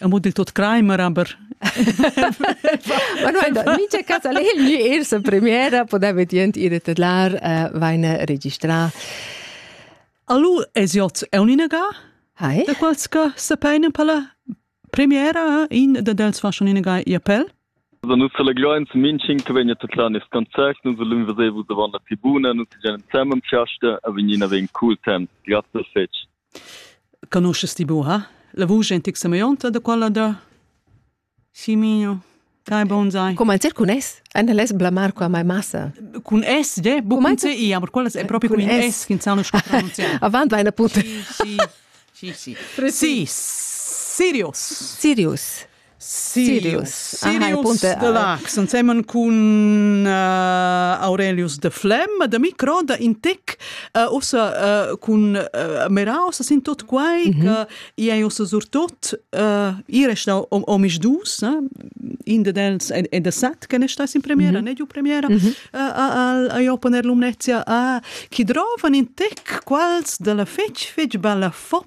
Amo dil tot Kramer, aber Ma guarda, mincha cas al è il gnü ir sa premiera, podeva dient ir e tedlar, uh, vaina registrà. Allu es iots è un'inaga, Hai? da quals che se peinen per la premiera, in da dels fa schon inaga i appell. Da nu selegliains minching che vegna tedlar nest concert, nun se l'un vesevu davan la tribuna, nun se gen zusammen pchaste, a vegnina vegn cool temps. Grazie fetg. Conosces ti buca la vusch en tic Semionta da quella da Simino? Dai bonsai. Come il zircunès? Anda les blamar qua mai massa. Cun S, de, bu cun C, aber quellas è proprio con in S che non so pronunciare. Avant vai una punta. Sì, sì, sì. Sì, Sirius. Sirius. Sirius. Sirius de Lax, ensemen cun uh, Aurelius de Flem, de micro, de intec, uh, ossa uh, cun uh, Meraus, sin tot quai, mm -hmm. che ei ossa surtot uh, ires da omis dus, eh? in de dels e de sat, che ne sta in premiera, mm -hmm. ne giu premiera, mm -hmm. uh, a io poner lumnezia a, chi drovan in tec quals de la fec fec balla fop